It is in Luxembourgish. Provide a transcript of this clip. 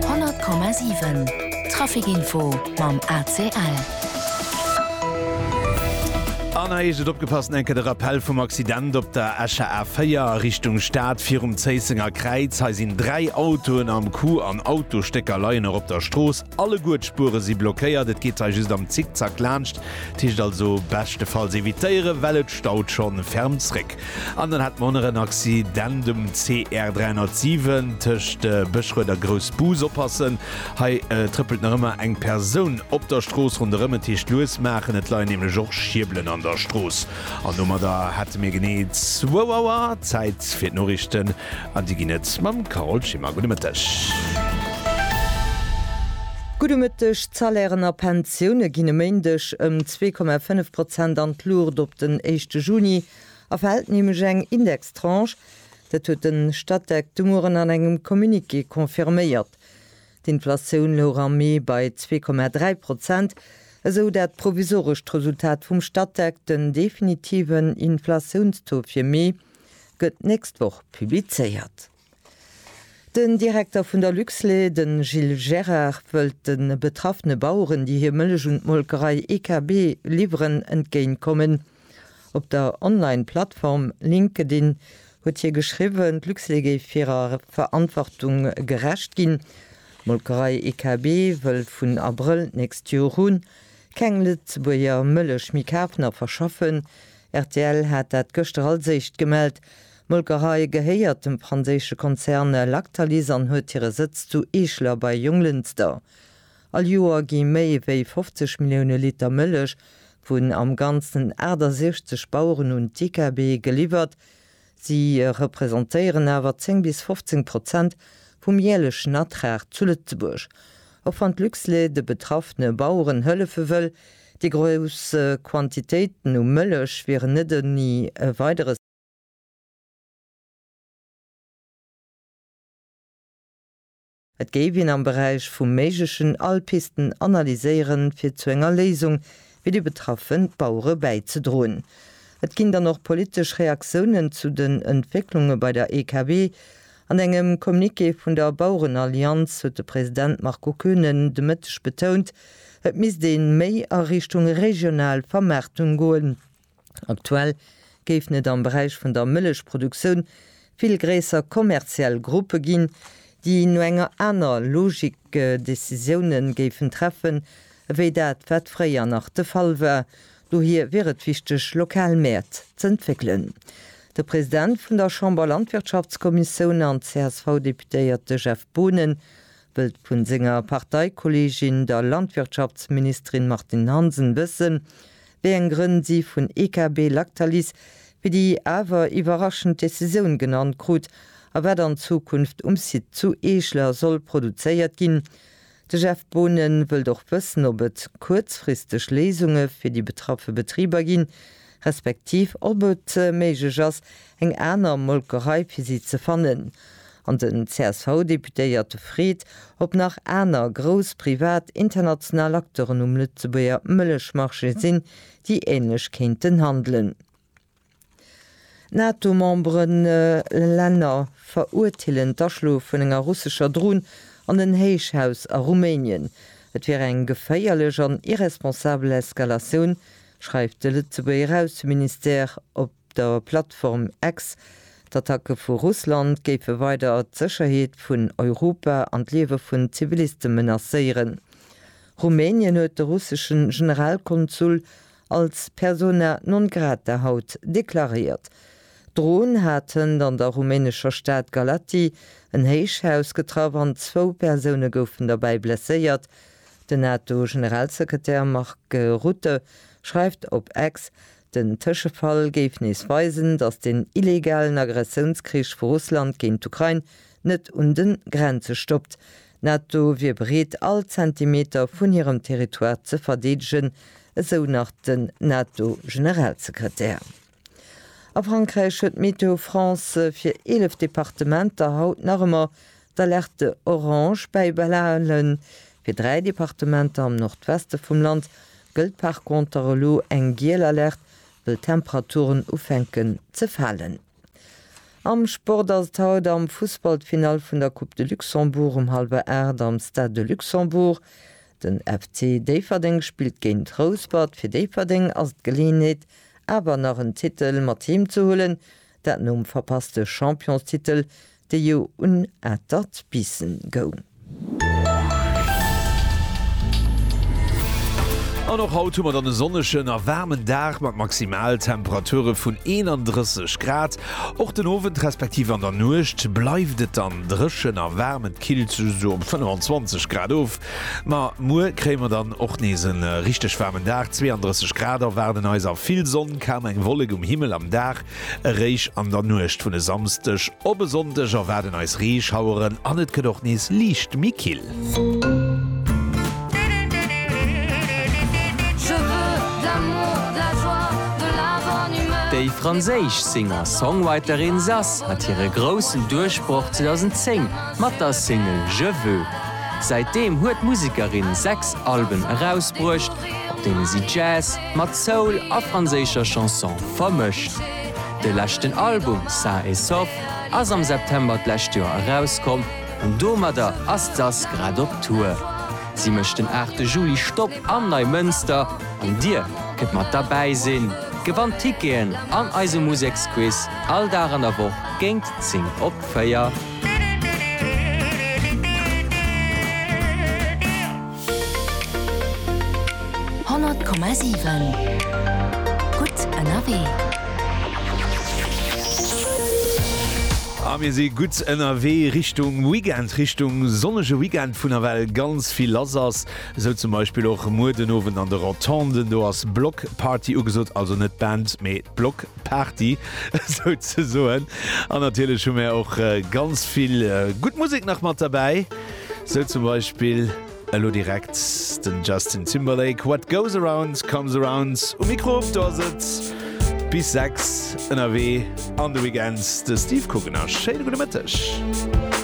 100,7 Trafic Info mam ACL. An hei heescht et opgepasst, Enquête a Rappell vum Accident op der Escher A4 a Richtung Stad virum Zéissenger Kräiz. Hei sinn dräi Autoen am Coup an Autostécker leien och op der Strooss. Alleguer d'Spuere si blockéiert. Et geet hei just am Zickzack laanscht. T heescht also beschtefalls evitéieren, well et staut schonn ferm zréck. An dann hat mer och nach en Accident um CR 307 tëscht Bëschrued a Groussbus. Oppassen, hei trëppelt nach ëmmer eng Persoun op der Strooss ronderëm, et heescht lues maachen, et leien nämlech och Schierbelen an der Strooss. An domadder hate mir genee zwou Auer Zäit fir d'Noriichten an déi ginn et mam Carole Schimmer. Gudde Mëtteg. Gudde Mëtteg. D'Salairen a Pensioune ginn e Méindeg ëm zwee Komma fënnef Prozent an d'Luucht. Op den éischte Juni A fält nämlech eng Indextranche, dat huet de Statec de Mueren an engem Communiqué confirméiert. D'Inflatioun louch am Mee bei 2,3 Prozent, esou dat provisorescht Resultat vum Statec. Den definitiven Inflatiounstaux fir Mee gëtt d'nächst Woch publizéiert. Den Direkter vun der Luxlait, de Gilles Gérard, wëllt de betraffene Baueren, déi hir Mëllech un d'Molkerei IKB liwweren, entgéint kommen. Op der Online-Plattform LinkedIn huet hie geschriwwen, d'Luxlait géif hirer Verantwortung gerecht ginn. D'Molkerei IKB wëll vun Abrëll d'nächst Joer un keng Lëtzebuerger Mëllech méi kafen a verschaffen. Rtl hat dat gëschter als éischt gemellt. D'Molkerei gehéiert dem franséische Konzern Lactalis an huet hire Sëtz zu Eeschler bei Jonglënster. All Joer gi méi wéi 50 Millioune Liter Mëllech vun am Ganzen 68 Baueren un d'IKB geliwwert. Si representéieren awer 10 bis 15 Prozent vum jäerlechen Ertrag zu Lëtzebuerg. Och wann d'Luxlait de betraffene Baueren hëllefe wëll, déi grouss Quantitéiten u Mëllech wieren net ouni Weideres. Et géif een am Beräich vum Méiglechen all Pisten analyséieren, fir zu enger Léisung fir déi betraffe Bauere bäizedroen. Et ginn dann och politesch Reaktiounen zu den Entwécklunge bei der EKB. An engem Communiqué vun der Bauerenallianz huet de President Marco Koenen de Mëtteg betount, et misst ee méi a Richtung regional Vermaartung goen. Aktuell géifen et am Beräich vun der Mëllechproduktioun vill gréisser kommerziell Gruppe ginn, déi no enger aner Logik Decisioune géifen treffen, ewéi dat wat fréier nach de Fall war. Dohier wier et wichteg, lokal Mäert z'entwéckelen. De President vun der Chamber Landwirtschaftskommissioun an CSV-Deputéierte Jeff Boonen wëllt vu senger Parteikolleegin, der Landwirtschaftsministerin Martine Hansen wëssen, Wéi eng Grënn si vun EKB Lactalis fir déi awer iwwerraschend Decisioun genannt krut a wat an Zukunft um Site zu Eeschler soll produzéiert ginn? De Jeff Boonen wëllt och wëssen, ob et kuerzfristeg Léisunge fir déi betraffe Betriber ginn, respektiv ob et méiglech ass, eng aner Molkerei fir si ze fannen. An den CSV-Deputéierte freet, ob nach aner grouss privat international Acteuren um Lëtzebuerger Mëllechmarché sinn, déi ähnlech kéinten handelen. D'NATO-Memberelänner verurteelen d'Aschloe vun enger russescher Dron an en Héichhaus a Rumänien. Et wier eng geféierlech an irresponsabel Eskalatioun, schreift de Lëtzebuerger Ausseministère op. der Plattform X. D'Attacke vu Russland géife weider d'Sécherheet vun Europa an d'Liewe vun Ziviliste menacéieren. Rumänien huet de russesche Generalkonsul als persona non grata haut deklaréiert. D'Dro'n hat hënt an der rumänescher Stad Galaţi en Héichhaus getraff an zwou Persoune goufen derbäi blesséiert. Den NATO-Generalsekretär Mark Rutte schreift op X, Den Tëschefall géif nees weisen, datt den illegalen Aggressiounskrich vu Russland géint d'Ukrain net un de Grenze stoppt. D'NATO wier bereet, all Zentimeter vun hirem Territoire ze verdeedegen, esou nach den NATO-Generalsekretär. A Frankräich huet Météo France fir 11 Departementer haut nach ëmmer D'Alerte Orange bäi Belaelen, fir dräi Departementer am Nordweste vum Land, gëllt par conter elo eng Giel Alerte, wëll d'Temperaturen ufänken ze falen. Am Sport ass et haut am Fussball d'Finall vun der Coupe de Luxembourg um hallwer 8 am Stade de Luxembourg. Den FC Déifferdeng spillt géint Rouspert. Fir Déifferdeng ass et d'Geleeënheet awer nach en Titel mat heem ze huelen, dat nom verpasste Championstitel Dee jo un atert Bissen goung. An och haut hu mer dann e sonnegen a waarmen Dag mat Maximaltemperature vun 31 Grad. Och den Owend respektiv an der Nuecht bleift et dann dréchen a waarm, et killt sech esou op 25 Grad of. Ma muer kréie mer dann och nees e richteg waarmen Dag, 32 Grad erwaarden eis a vill Sonn, kaum eng Wollek um Himmel am Dag. Eréischt an der Nuecht vun e Samsdeg op e Sonndeg erwaarden eis Reeschaueren an et gëtt och nees liicht méi kill. Déi franséisch Singer-Songwriterin Zaz hat hire groussen Duerchbroch 2010 mat der Single Je veux. Säitdeem huet d'Musekerin sechs Alben erausbruecht, op deene si Jazz, Mat Soul a franséischer Chanson vermëscht. De leschten Album Sain et Sauf ass am September d'lescht Joer erauskomm an domadder ass d'Sass grad op Tour. Si mécht den 8 de Juli Stopp am Neimënster an Dir kënnt mat derbäi sinn, gewannt Ticketen an eise Museksquiz all Dag an der Woch géint 10 op 4. Honnert Komma siwen, gutt ënnerwee! A mir si gutt ënnerwee Richtung Weekend, Richtung sonnege Weekend, vun ewell ganz vill lass ass. Esou zum Beispill och muer den Owend an de Rotonden, do ass Block Party ugesot, also net d'Band, mee d'Block Party souzesoen. An natierlech hu mir och ganz vill gutt Musek nach mat derbäi. Sou zum Beispill elo direkt den Justin Timberlake, What goes around comes around um Mikro. Do ass et bis 6 ënnerwee an de Weekend de Steve Kuckener. Schéine gudde Mëtteg.